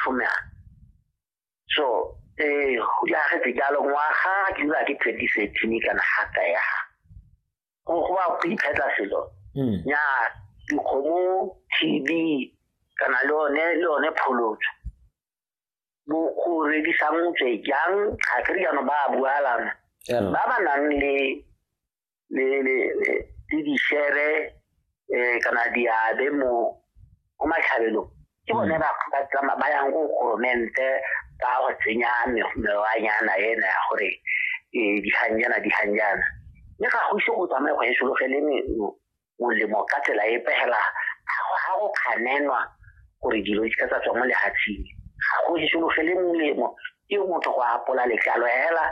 tlhomela so eh go ya ga tse jalo ngwaga ke dira ke twenty thirteen kana ga ka ya go go ba go iphetla selo hmm. ya dikgomo tb kana le one le one pholotso bo go redisang tswe jang ga ke riano ba bualana ba ba nang le le le le di share eh kana di abe mo mo matlhabelong ke bone ba ba tsama ba yang go goromente ba go tsenya mewanyana ena ya gore eh dihanjana dihanjana mme ga go ise go tsamaye go e sologeleng molemo ka tsela e pegela ga go kganenwa gore dilo di ka tsa tswa mo lehatsheng ga go solofele molemo ke motho go apola letlalo hela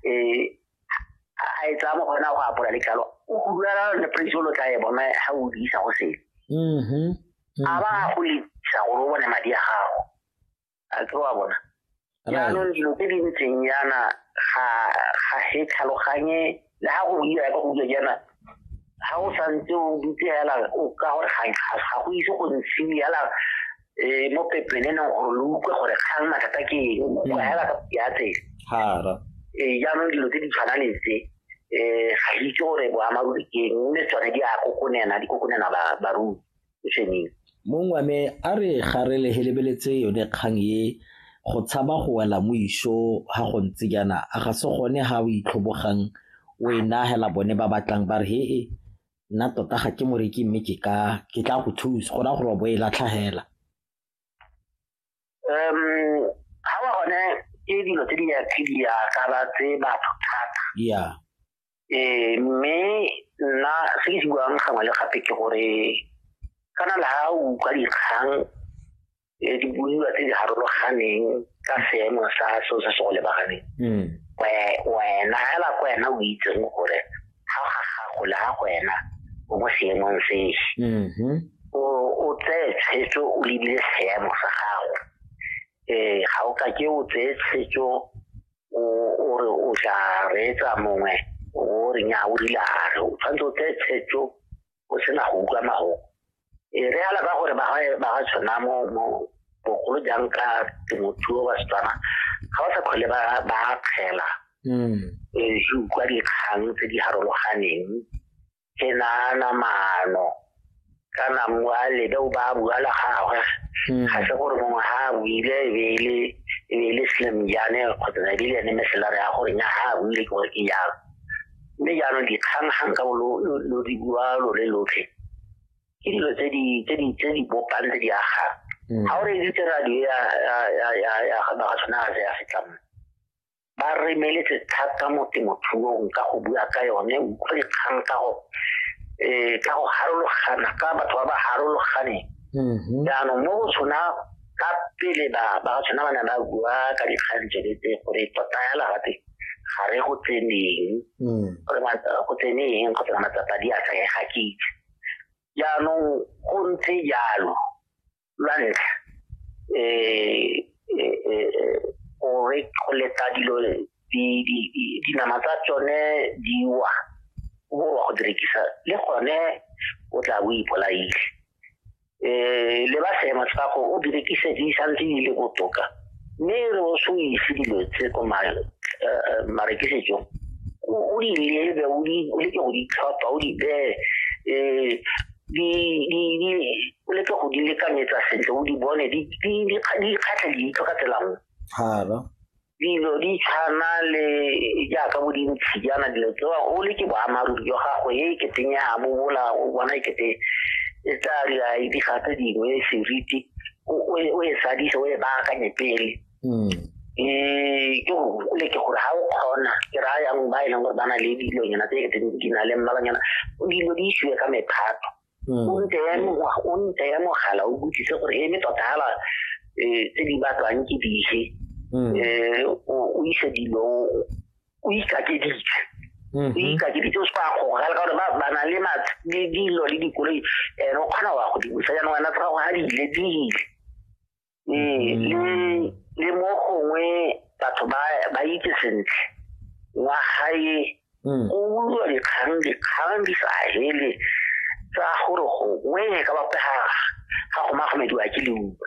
um a e tsaya mo go yona go apola letlalo o gudulala le praise lo tla e bona ga o diisa go sele mm-hmm. a ba go lesa gore o bone madi a gago a tse wa bona jaanong dilo tse di ntseng yana ga ga se tlhaloganye le ga go buiwa ka go buiwa jaana ga o santse o dutse fela o ka gore ga go ise go ntshiwe fela um mo pepene neng gore lo utlwe gore kgang mathata ke eng o kwa fela ka ya tsela hara ee jaanong dilo tse di tshwana le tse um ga itse gore boamaruri ke eng mme tsone di a kokonena di kokonena barui sešweng. Mong wa me a re ga re lehelebeletse yone kgang e go tshaba go wela mo iso ha go ntse jaana a ga se gone ha o itlhobogang o e nagela bone ba batlang ba re he e nna tota ga ke moreki mme ke ka ke tla go thusa go raya gore wa bo e latlhagela um ga wa gone ke dilo tse di ya tse di ya ka ba tse batho thata ya eh mme nna se ke se buang gangwe le gape ke gore kana la ha o ka dikgang eh, di buiwa tse di harologaneng ka seemo sa seo se se go lebaganeng mm. wena hela ko wena o itseng gore ga ga gago le ga wena o mo seemong se mm-hmm. o tseye tshwetso o lebile seemo sa gago um ga o ka ke o tseye tshwetso o re o tla reetsa mongwe o re nya o rilare o tshwanetse o tseye tshwetso o sena go utlwa mago e re ala ka gore ba ga tshwana mo mo bogolo jang ka temothuo ba setswana ga ba sa kgole ba ba kgela mm e se utlwa dikgang tse di harologaneng ke nana mano kana mwa le do ba bua la gagwe mm. ga se gore mongwe ha a buile e be e le e be e le slim jane kgotsa ne di le ne meselare ya gore nya ha a buile ke gore ke jalo mme jaanong dikgang ga nka bo lo di bua lo le lotlhe ke dilo tse di tse di tse di bopang tse di aga mm. ga o re editse radio ya ya ya ya ya ga ba tshwana ga ya fetlang ba re meletse thata mo temothuong ka go bua ka yone utlwe dikgang ka go eh ka go harologana ka batho ba ba harologane mm-hmm. jaanong mo go tshwana ka pele ba ba tshwana ba ne ba bua ka dikgang tse tse gore tota ya lagate ga re go tseneng mm. gore go tsene eng kgotsa matsapa di a tsaya ga ke itse jaanong go ntse jalo lwa ntlha um go leta dilo dinama tsa tsone di wa go borwa go direkisa le gone o tla bo ipolaile um le ba seemo sa go o berekise di santse di le botoka mme re o se o ise dilo tse ko marekisetsong o di lebe o leke go di tlhopha o di bee um o leke go di lekanyetsa sentle o di bone di kgatlha leitlho ka tsela nngwe dilo di tshwana le jaaka bo dintshi jaana dilo tsewa o le ke boammaaruri jwa gago e keteng ya mo bola o bona e kete e tla dira diga tse dingwe seriti o e sadise o e baakanye pele um ke gole ke gore ga o kgona ke raya yang ba e leng gore ba na le dilonyana tse e keteng di na le mmalonyana dilo di isiwe ka mephato hmm. o ntse ya o ntse ya mogala o botsise gore e me tota hala e, tse di batlwang ke dife hmm. e, o ise dilo o ikakeditse mm-hmm. o ikakeditse o se ka gogala ka gore ba na le le dilo le dikoloi ene o kgona wa go di busa jaanong wena tsa gago ga di ile di ile ee le le mo gongwe batho ba ba itse sentle wa gae mm. o bulwa dikgang dikgang di sa hele tsa gore gongwe ka bapega ga go magomediwa ke leuba